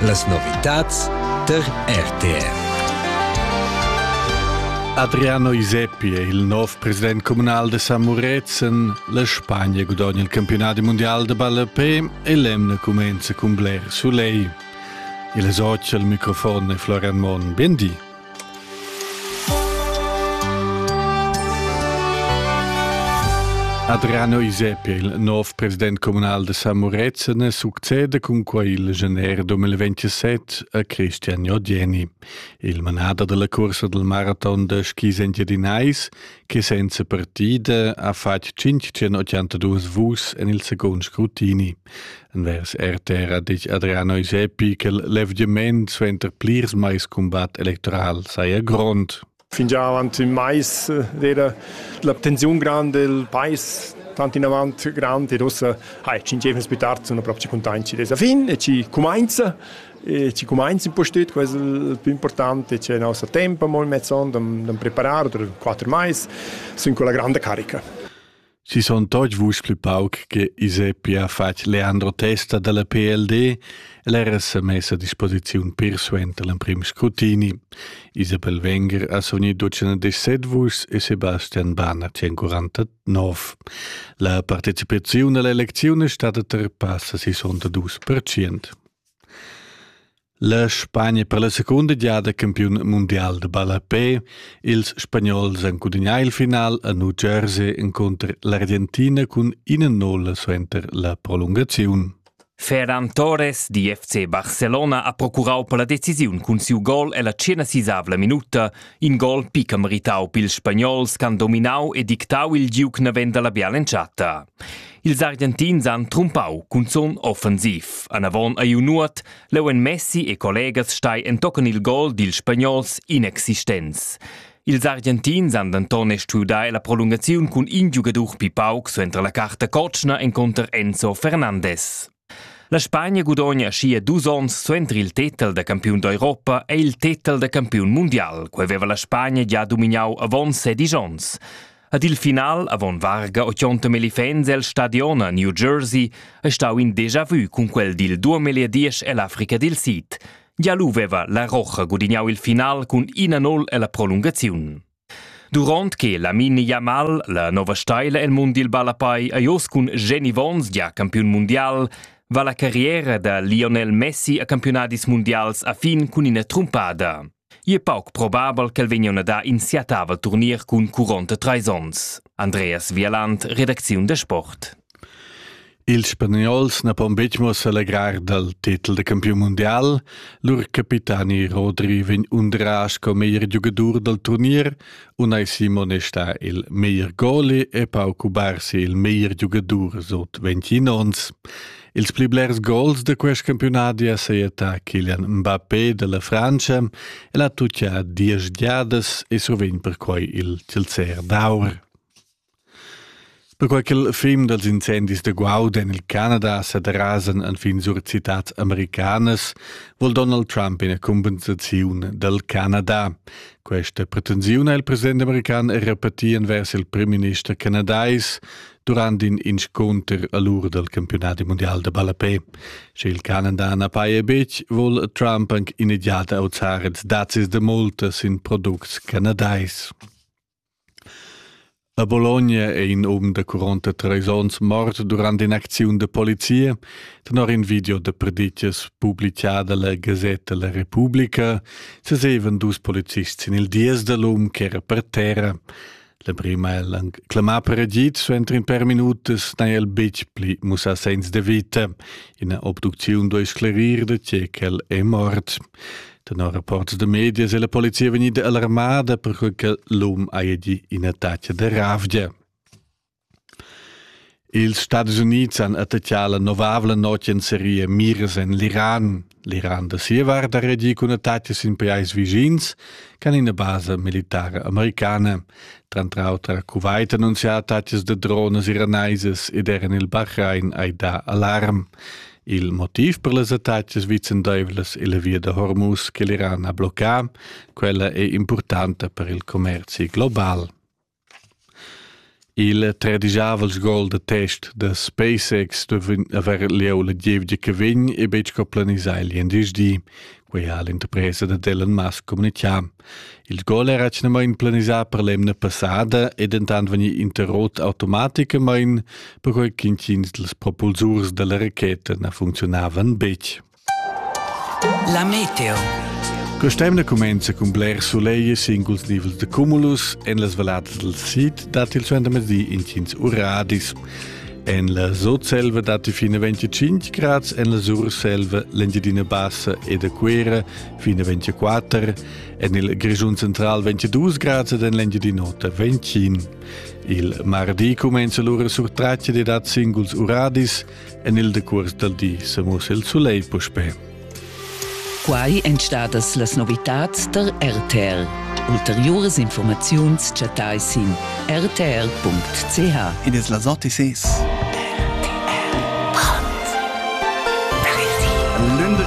Las novitads per RTR. Adriano Iseppi è il nov president comunal de San Murezen. La Spagna gudogna il campionat mondial de ballapé e l'emna comenza cun bler soleil. Il socia al microfon è Florian Mon. Buen di. Adriano Isep, il nov president communal de San Murezzene, succede cun quei il gener 2027 a Christian Odieni, il manader della corsa del marathon de skis engiadinais, che senza partida ha fatg 582 vus en il second scrutini. Vers RTR ha detg Adriano Isepi che l'evgiament suenter plirs mais cumbat electoral saja grond. Fingià avant ün mais era la tensiun grande del pais tant in avant grand e rossa hai ci gievens più tardi sono proprio contenti dessa fin e ci comincia e ci comincia un po' stüt questo il più importante c'è il nostro tempo molto mezzon da preparare per quattro mais sono con la grande carica Si son toch vusch plü pauc che Iseppi ha fatg Leandro Testa dalla PLD e l'era sa mess a disposiziun pir suenter l'emprim scrutini. Isabel Wenger ha sogni 217 vuschs e Sebastian Bahn ha 149. La partecipaziun alla elecziun è stata terpassa 62%. La Spagna per la secunda giada campiun mundial da ballapè. Ils Spagnols han gudagnà il final a New Jersey encunter l'Argentina cun ina nulla suenter la prolungaziun. Ferran Torres di FC Barcelona ha procurau per la decisiun cun siu gol ella tschena sisavla minuta In gol picca meritau pils spagnols ch'han dominau e dictau il giug naven dalla bial'entschatta. Ils Argentins han trumpau cunzun offensiv. Anavon ei Nuot, leu en Messi e collegas stai entochen il gol dils spagnols inexistents. Ils Argentins han denton stuiu dar la prolungaziun cun in giugadur pi pauc suenter la carta cotschna encunter Enzo Fernandes. La Spagna gudogna schia dus onns suenter il tetel da campiun d'Europa ei il tetel da campiun mundial, quei veva la Spagna gia domignau avon sedisch onns. Ad il final, avon varga 80 elefants el stadion a New Jersey, ei stau in déjà vu cun quel dil duamilliadies ell'Africa dil Sid. Gia lu veva la Rocha gudignau il final cun 1-0 ella prolungaziun. Duront che Lamine Yamal, la nova steila el mund dil ballapai, ei oz cun Jenny Vons gia campiun mundial, va la carriera da Lionel Messi a campiunadis mundials a fin cun ina trumpada. Ei è pauc probabel ch'el vegnion a dar in siatava turnier cun curonta treis onns. Andreas Wieland, redacziun da sport. Ils spagnols na pon betg mo selegrar dal tetel da campiun mundial, lur capitani Rodri vegn undrà sco meglier giugadur dal turnier, Unai Simone sta il meglier goalie e Pau Cubarsi il meglier giugadur sut 21 onns. Ils pli blers gols da quest campiunadi ha sajettà Kylian Mbappé dalla Frantscha e l'ha tutgia diesch giadas e survegn perquai il Chilzer d'aur. Perquai ch'il fim dals incendis da guaud en il Canada sa derasan enfin sur citads americanas, vul Donald Trump ina cumpensaziun dal Canada. Questa pretensiun ha il president american repetì envers il primminister canadais durant in inscunter a l'ur dal campiunat mundial da ballapè. Sche il Canada na paja betg, vul Trump anc immediat auzar ils dazis da multa sin products canadais. A Bologna è in um da quaranta treis onns mort durant in'acziun da polizia. Tenor in video da preditgas publichada la Gazetta La Repubblica sesevan dus policists sin il dies da l'um ch'era per terra. L'emprim ha el anc clamà per agid, so entri in per minutas n'ha el betg pli mussà segns da vita. Ina obducziun duai sclerir da tge ch'el è mort. Tenor rapports da medias è la polizia vegnida alarmada perquai che l'um haja gì ina tatga da ravgia. Ils Stadis Unids han attacchà la novavla notg en seria miras en l'Iran. L'Iran da sia vart ha reagì cun attacchi sin pajais vischins che ina basa militara americana. Tranter auter a Kuwait annunzià attacchis da drones iranaisas ed er en il Bahrain hai dà alarm. Il motiv per las attacas vicendaivlas illa via da Hormuz che l'Iran ha bloccà, quella è importanta per il commerzi global. Il tredigiavels gol da test da SpaceX stueva avair lieu la gievgia che vegn e betg planisà il venderdi, quei ha l'interpresa dad Elon Musk communicà. Il gol era atgnamain planisà per l'emna passada e dentant vegni interrot automaticamain, perquai ch'intgins dals propulsurs dalla racheta na funzionavan betg. La meteo. Quest'emna cumenza cun bler sulegl singuls nivels de cumulus. En las valladas dal sid dat il suentermezdi intgins uradis. En la Sotselva datti fina 25 grads, en la Surselva l'Engiadina Bassa e da Cuera fina 24, en il Grischun Central 22 grads ed en l'Engiadina Ota 25. Il mardi cumenza lura sur tracce dad singuls uradis, en il decuors dal di sa mussa il sulegl puspè. Quai èn stadas las novitads tar RTL. Ulteriuras informaziuns chattai sin rtl.ch. Id es las OTCs.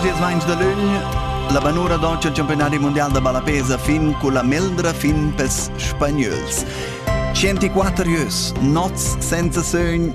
L'11 de lugn la banura deutsche campionati mondial da ballapesa fin con la meldra fin pels spagnols. 104 jeux, nots senza sogn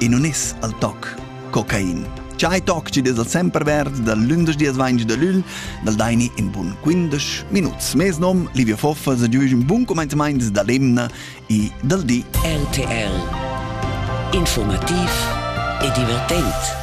e non es al toc cocain. Chai toc chi dess al semper verd dal lündesch dias vaingi da lüll, dal daini in bun quindesch minuts. Mes nom, Livio Foffa, se giuisch un bun comenzament da l'emna e dal di RTL Informativ e divertent.